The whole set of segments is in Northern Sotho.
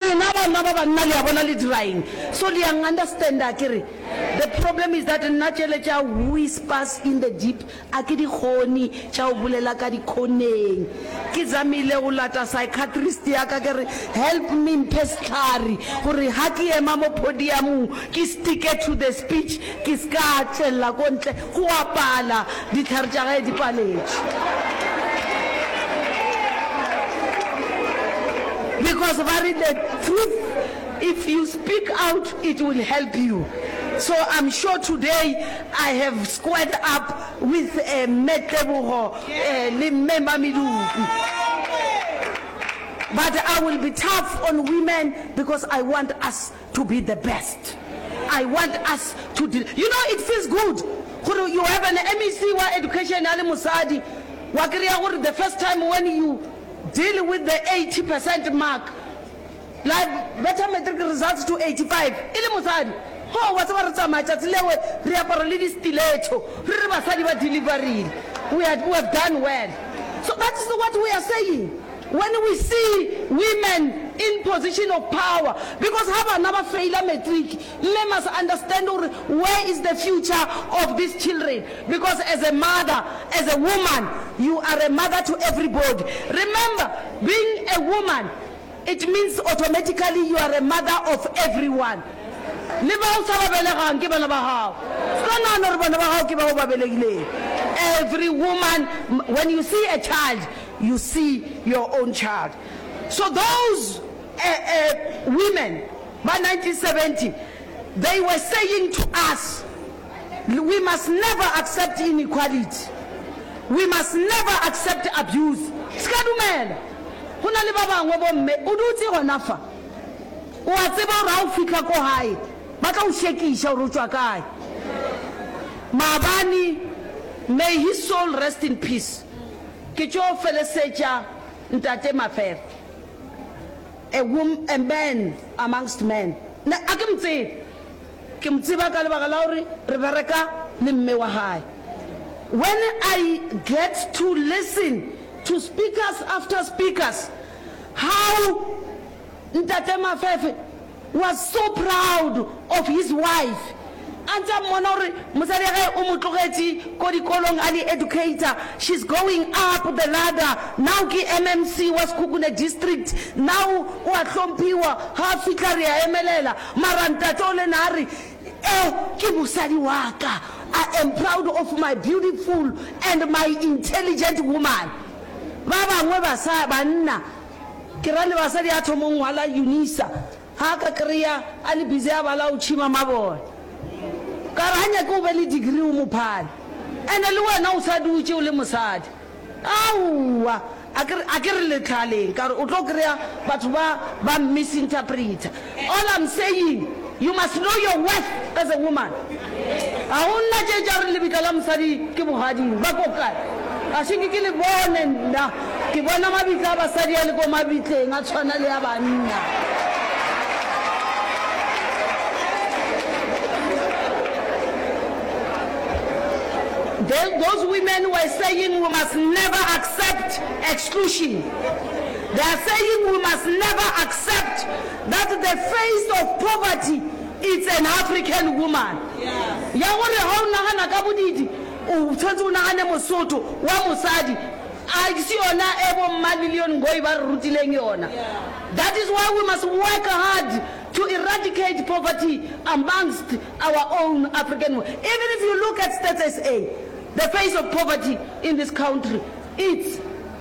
Lena banna ba banna le a bona le dira eng so le yang understand akere the problem is that nna tšele tša whispers in the deep a ke di kgone tša go bolela ka dikhoneng ke zamile go lata psychiatrist ya ka ke re help me mphe sehlare gore ha ke ema mo podiamong ke stick-e to the speech ke se ka tšwella ko ntle Go a pala, dihlare tša gae di paletše. Because ba re the truth if you speak out it will help you. So I'm sure today I have squared up with Mme Tebogo le Mme Mamedupi. But I will be tough on women because I want us to be the best I want us to di you know it feels good gore you have an MEC wa education a le mosadi wa kry-a gore the first time when you deal with the 80 percent mark la betha matric results to 85 e le mosadi ho wa tseba re tsamaya tšatsi lewe re apara le di-stiletto re re basadi ba deliverile we, had, we have done well so that's what we are saying When we see women in position of power because ha bana ba failer matric mme must understand gore where is the future of these children because as a mother as a woman you are a mother to everybody remember being a woman it means automatically you are a mother of everyone le bao sa ba belegang ke bana ba gago ska nagana gore bana ba gago ke bao ba belegileng every woman when you see a child you see your own child so those uh, uh, women ba 1970 they were saying to us we must never accept inequality we must never accept abuse ska dumela go na le ba bangwe bomme o dutse gona fa o a tseba gore ga o fitlha ko gae ba tla o shekiša gore o tšwa kae maabane may his soul rest in peace Ke tšo felesetša Ntate Mafere, a wom, a man amongst men. Nna a ke mo tsebe. Ke mo tseba ka lebaka la gore re bereka le mme wa gae. When I get to listen to speakers after speakers, how Ntate Mafefe, was so proud of his wife a ntse a mmona gore mosadi ya gae o mo tlogetše ko dikolong a le educator, she's going up the ladder, now ke MMC wa Sekhukhune district, now o a hlomphiwa, ga a fihla re a emelela, mara ntate o le na a re e ke mosadi wa ka, I am proud of my beautiful and my intelligent woman. Ba bangwe basa, banna, Ke ra le basadi a thomong ngwala Yunisa ha a ka kreya a le busy a bala o tšhima mabone. Ka re ha nyake o be le degree o mo phale. Ene le wena o sa dutše o le mosadi. Aowa! A ke re, a ke re le tlhaleng ka re o tlo kreya batho ba ba misinterpreter. All I'm saying, you must know your worth as a woman. Ga go nna tše tša re lebitla la mosadi ke bogading, ba ko kae? Ga se nke ke le bone nna, ke bona mabitla a basadi a le ko mabitleng a tshwana le a banna. Those women were saying we must never accept exclusion. They are saying we must never accept that the face of poverty it's an African woman. Ya gore ha o nagana ka bodidi o tshwantse o nagane Mosotho wa mosadi a se yona e bo mma Lillian Ngoyi ba re rutileng yona. That is why we must work hard to eradicate poverty amongst our own African women. Even if you look at Stats SA, the face of poverty in this country it's.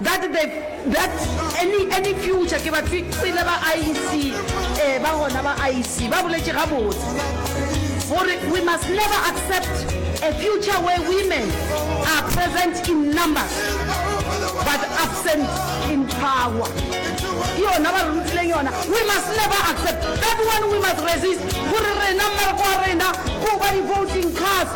That the that any any future ke ba fixile ba IEC eh ba gona ba IEC ba boletše gabotse gore we must never accept a future where women are present in numbers but absent in power ke yona ba re rutileng yona we must never accept that one we must resist gore rena mmereko wa rena ko ba di voting cars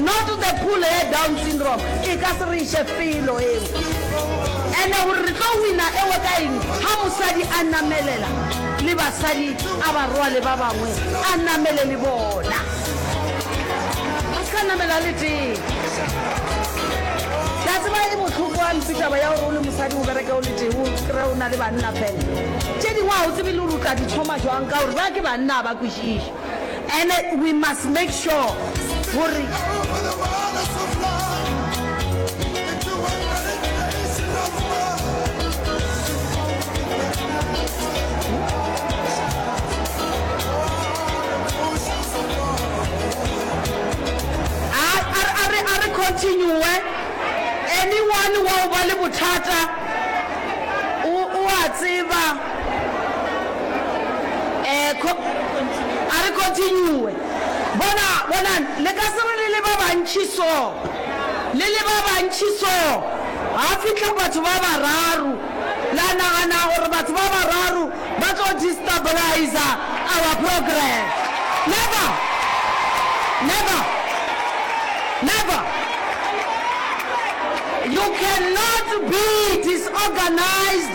Not the pool ya down syndrome e ka se re iše felo eo. Ene gore re tlo wina ewe ka eng ha mosadi a namelela le basadi a ba rwale ba bangwe a namele le bona. A se ka namela le tee. Ke a tseba e bohloko ampi taba ya gore o le mosadi o bereke o le tee o kry-e o na le banna fela. Tše dingwe ga o tsebe le gore o tla di thoma jwang ka gore ba ke banna ga ba kwešiše. ene we must make sure gore a re continue anyone wa o ba le bothata o a tseba Eh, co, a re continue. Bona, bonang, le ka se re le le ba bantši so, le le ba bantši so, ga fihla batho ba bararo, la nagana gore batho ba bararo ba tlo destabiliza our program. Never! Never! Never! You cannot be disorganized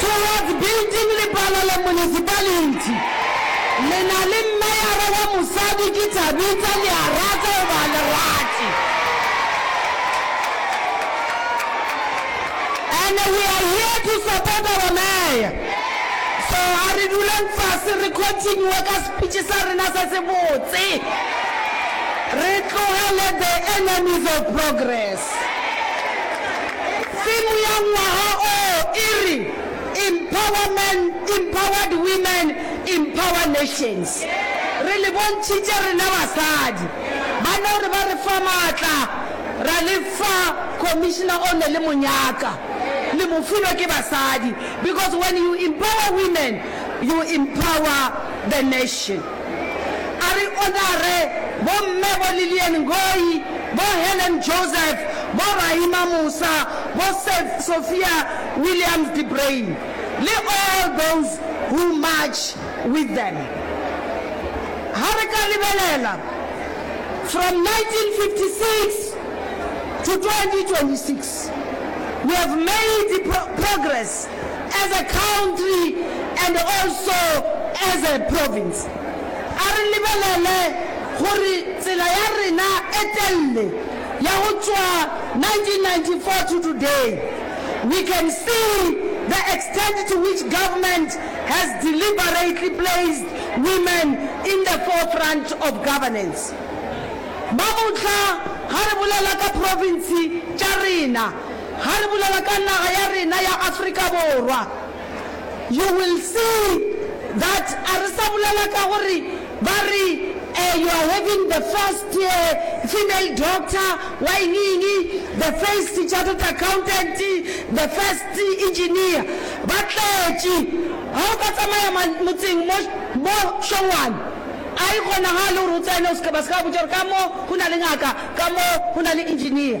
Towards building Lepalale Municipality. Le na le meyara wa mosadi ke Thabitha le a rata goba a le rate. And we are here to support our mayor. So a re duleng fase re continue ka speech sa rena se se botse. Re tlogele the enemies of progress. Theme ya ngwaga o e re, Empower Men, Empowered Women, Empower Nations. Re le bontšhitše rena basadi. Ba no re ba re fa maatla, ra le fa Commissioner o ne le mo nyaka. Le mo filwe ke basadi because when you empower women, you empower the nation. A re Onare, Bomme bo Lillian Ngoyi, bo Helen Joseph, bo Raima Musa, bo Sophia Williams de Bruyn, le all those who march with them. Ga re ka lebelela from 1956 to 2026, we have made progress. as a country and also as a province. A re lebelele gore tsela ya rena e telle ya go tšwa 1994 to today, we can see the extent to which government has deliberately placed women in the forefront of governance. Ba mohla ga re bolela ka province tša rena, Ga re bolela ka naga ya rena ya Afrika Borwa, you will see that a re sa bolela ka gore ba re eh, you are having the first eh, female doctor wa eng-eng, the first chartered accountant, the first engineer. Ba tletše. Ga o ka tsamaya ma, motseng mo, mo Šongwane, a e kgonagale gore o tsene o se ke, ba se ke ba botša gore ka mo go na le ngaka, ka mo go na le engineer.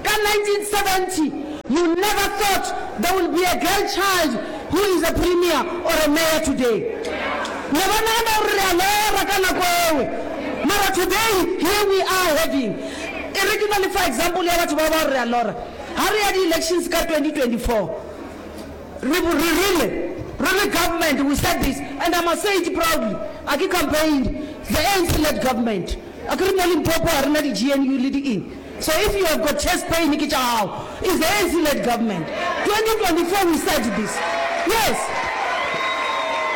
Ka 1970, you never thought there will be a girl child who is a premier or a mayor today. Ne ba nagana gore re a lora ka nako ewe, mara today here we are having, e re ke na le fa example ya batho ba ba gore re a lora. Ha re ya di-elections ka 2024, re re rile, re le government we said this and I must say it proudly, a ke campaign, the ANC-led government, akere mo Limpopo ha re na di-GNU le di-eng, So if you have got chest pain ke tša gago. Is the ANC led government 2024 we said this yes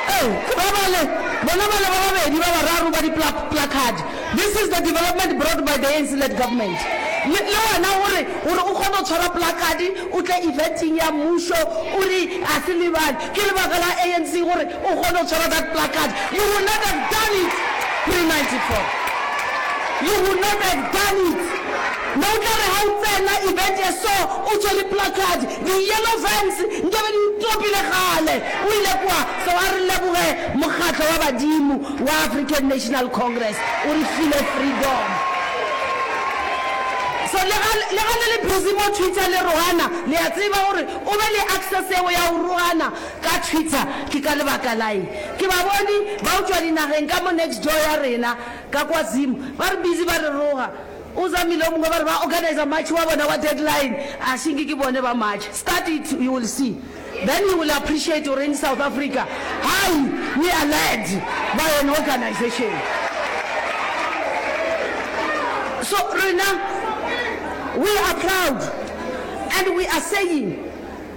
Ee ke ba bale bona bale ba babedi ba bararo ba di placard this is the development brought by the ANC led government le le wena gore gore o kgone go tshwara placard o tle eventeng ya mmušo o re a se lebale ke lebaka la ANC gore O kgone go tshwara that placard. You will not have done it pre-94. You will not have done it. Ne o tla re ha o tsena event ye so, o tshwere placard, di yellow vans nkabe di o topile kgale. O ile kwa. So a re leboge mokgatlo wa badimo wa African National Congress, o re file freedom. So le ga, le ga le le busy mo Twitter le rogana, le a tseba gore o be le access eo ya go rogana. Ka Twitter, ke ka lebaka laeng ke ba bone ba utšwa dinageng ka mo next door ya rena ka kwa Zim, ba re busy ba re roga, o zamile o mongwe ba re ba organiser march wa bona wa deadline, a šinke ke bone ba march, start it you will see then you will appreciate o reng South Africa hai we are led by an organisation so rena we are proud and we are saying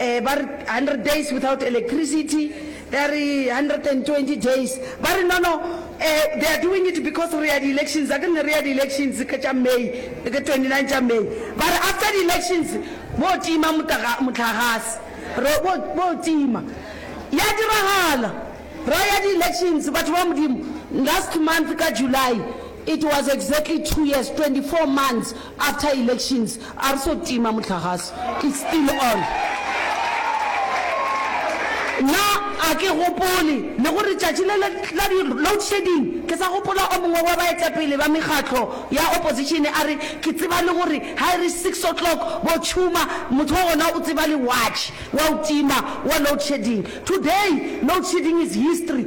um ba re hundred days without electricity, ba re hundred and twenty days, ba re no no um they are doing it because re ya di elections, akere ne re ya di elections ka tša May, ka twenty nine tša May, ba re after di elections bo tima mohlagase, re bo bo tima, ya diragala ra ya di elections batho ba Modimo, last month ka July it was exactly two years, twenty four months after elections, A re so tima mohlagase, it's still on. Nna a ke gopole le gore tšatši le le la di loadshedding ke sa gopola o mongwe wa baetapele ba mekgatlo ya opposition a re ke tseba le gore ha e re six o'clock bo tšhuma motho wa gona o tseba le watch wa o tima wa loadshedding. Today loadshedding is history.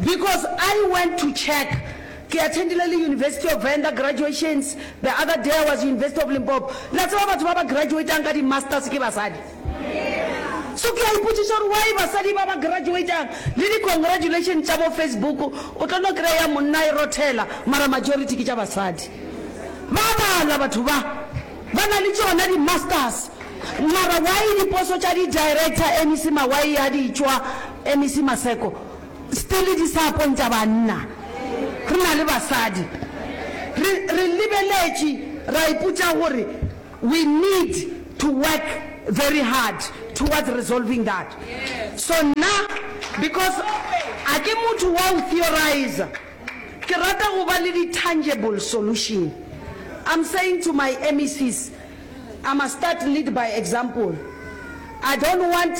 Because I went to check, ke attendile le University of Venda graduations, the other day I was University of Limpopo, la tseba batho ba ba graduatang ka di masters ke basadi. So ke a ipotšiša gore why basadi ba ba graduatang le di congratulations tša bo Facebook o tlo no kry-a ya monna e rothela mara majority ke tša basadi. Ba a bala batho ba, ba na le tšona di masters mara why diposo tša di director MEC Mawai ya di tšwa MEC Maseko? Stele di sa pontša banna, re na le basadi. Re, re lebeletše, ra ipotša gore we need to work very hard towards resolving that. So nna, because ga ke motho wa go theoriser, ke rata go ba le di tangible solution. I'm saying to my MECs, I must start lead by example. I don't want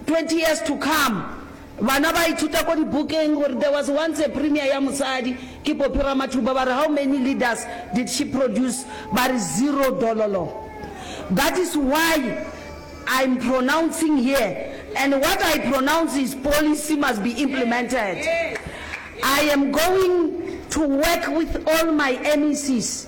twenty years to come, Bana ba ithuta ko dibukeng gore there was once a premier ya mosadi ke Poppy Ramathuba ba re how many leaders did she produce ba re zero dololo that is why I'm pronouncing here and what I pronounce is policy must be implemented I am going to work with all my MECs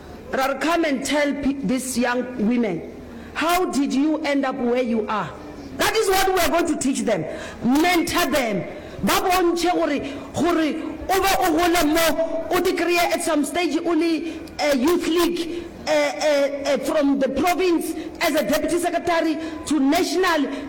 Ra re come and tell these young women how did you end up where you are, that is what we are going to teach them, mentor them, ba bontšhe gore gore o be o gole mo o te kreye at some stage o le youth league from the province as a deputy secretary to national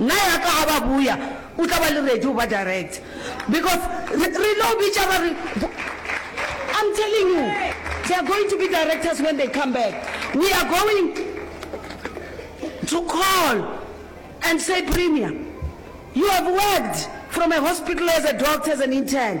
Na ya ka ga ba buya o tla ba le ready go ba direct because re re no bitša ba re I'm telling you they are going to be directors when they come back we are going to call and say premier you have worked from a hospital as a doctor as an intern